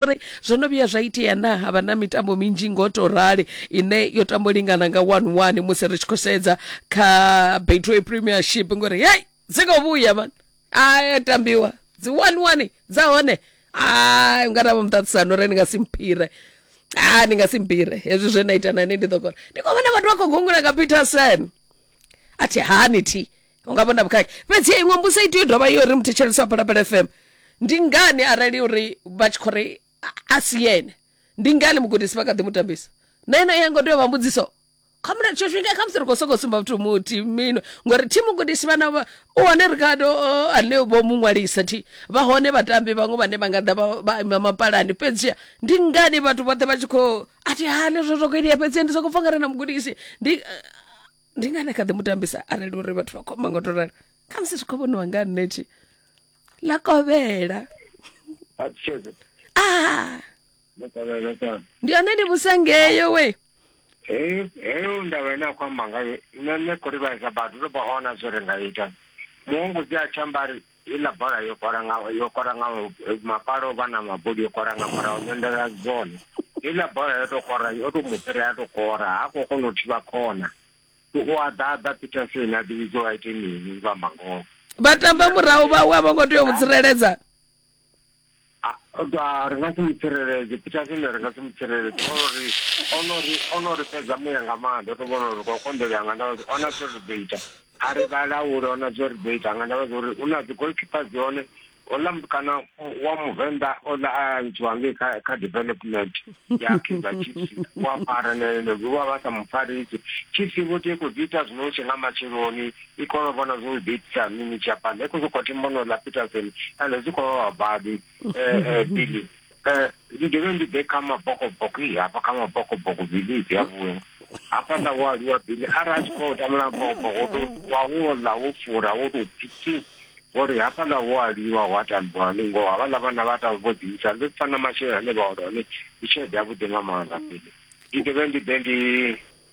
uri zwo no vhuya zwa itea na ha vha na mitambo minzhi ngo to rali ine yo tambo lingana nga 1-1 musi ri tshi khou sedza kha Betway Premiership ngori hey dzi khou vhuya man a tambiwa dzi 1-1 dza hone a nga na muṱaṱisano uri ni nga si mphire a ni nga si mpire hezwi zwe na ita nani ndi ḓo kona ndi khou vhona vhathu vha khou gungula nga Peterson a thi hani thi hu nga vhona vhukhakhi fhedzi ya iṅwe mbusa i tea u dovha yo ri muthetshelesi wa phalaphala fm ndi ngani arali uri vha tshi khou ri a si yene ndi ngani mugudisi vha kha ḓi mu tambisa na ino ya ngo tea u vha mbudziso kha mulato tsho swika kha musi ri khou sokou sumba vhathu muthi mino ngori thi mugudisi vhana u hone ri kha ane vho mu ṅwalisa thi vha hone vhatambi vhaṅwe vhane vha nga ḓa vha ima mapalani fhedzi ndi ngani vhathu vhoṱhe vha tshi khou a thi hane zwo zwo khou itea fhedzi ndi sokou pfa nga re na mugudisi ndi ndi ngani a kha ḓi mu tambisa arali uri vhathu vha khou amba nga u to rali khamusi zwi khou vhoniwa nga nṋe tshi ḽa kovhela a tsheke ah ndo kovhela kana ndi hone ndi musangeyo we heyo heyo ndava ine a khou amba ngayo nṋe nṋe khou livhaisa vhathu ndo vha ona zwo ri nga ita muhungudzi a tshi amba ari Heiḽa bola yo kola nga yo kola nga mapalo vha na mabodi yo kola nga murahu nyondela dzone heiḽa bola yo to kora yo to mu fhira ya to kora ha khou kona u thivha khona u a ḓaḓa peterson a ḓivhidza wa ite mini vha mangoho vha tamba murahu vhawe a vho ngo tea u mu tsireledza Ah, ah, ri nga si mutsireledze petersone ri nga si mutsireledze ori onori onori fhedza muya nga maanḓa ndo to vhona uri kwa konḓelela nga ndavha zwo ona zwo ri ḓo ita a ri vha laule ona zwo ri ḓo ita nga ndavha zwa uri u na dzi goalkeepers hone ola kana wa muvenḓa ola a ntshiwa ngei kha kha development ya kaizer chiefs wa fara nene vha vha sa mufarisi chiefs vho tea khou dzi ita zwino hu tshe nga matsheloni i kone u vhona zwo zwi ḓiitisa mini japan i khou sokou thi mbono ḽa peterson ende zwi khou vha vhabadi um eh, eh, bili um ndi dovhe ndi ḓe kha mabokoboko i hafha kha mabokoboko bili dzi a vhuya hafha nda wo aluwa bili arali a tshi khou tambula mabokoboko to wa wo ḽa wo fura wo tou pfiti ngori hafha ḽa wo aliwa wa tambiwa ni ngoho havha ḽa vhana vha tambi vho ḓiisa ndi pfa na masheleni ane vha ola hone ndi tshelede yavhuḓi nga maanḓa bili ndi dovhe ndi ḓe ndi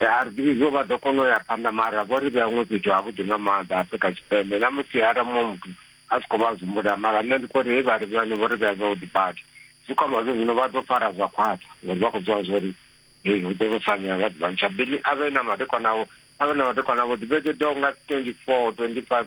Arbi izwo vha ḓo kona u ya phanḓa mara vho ri vhea ṅwepejo havhuḓi nga maanḓa Afrika Tshipembe na musi ara muṅwe muthu a si khou vha zumbula mara nṋe ndi khou ri hei vha ri vhane vho ri vhea zwavhuḓi badi zwi khou amba zwo zwino vha ḓo fara zwa khwaṱha ngori vha khou zwiwa zwo ri hei hu ḓo vho sanya vha ḓivha ntsha bili a vhe na madekwanavho a vhe na madekwanavho dibeke do nga 24 25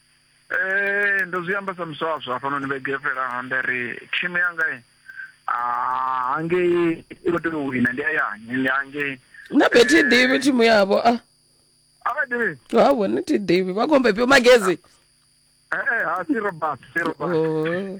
Eh, ndo zwi amba sa muswaswa hafhanoni vhege yo fhelaho nda ri thimu yanga i ah, hangei i khou tea u wina ndi hayani ndi hangei na be thi ḓivhi thimu yavho a a vha ḓivhi havho ni thi ḓivhi vha khombe fhio magezi Eh, eh, ha si robert si robert Oh.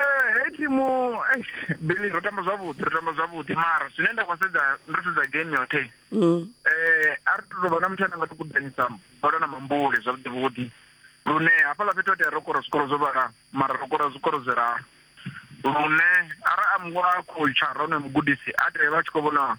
Eh, hei thimu eh, bili ro tamba zwavhuḓi ro tamba zwavhuḓi mara zwine nda khou sedza ndo sedza game yoṱhe mm. eh a ri tou vha na muthu ane nga tukudanisa bola na mambule zwavhuḓi vhuḓi lune hafhaḽa fhethu otea ro kora zwikoro zwo vhala mara ro kora zwikoro zwi raru lune ara a mngwa a khou tsha rone mugudisi a tea vha tshi khou vhona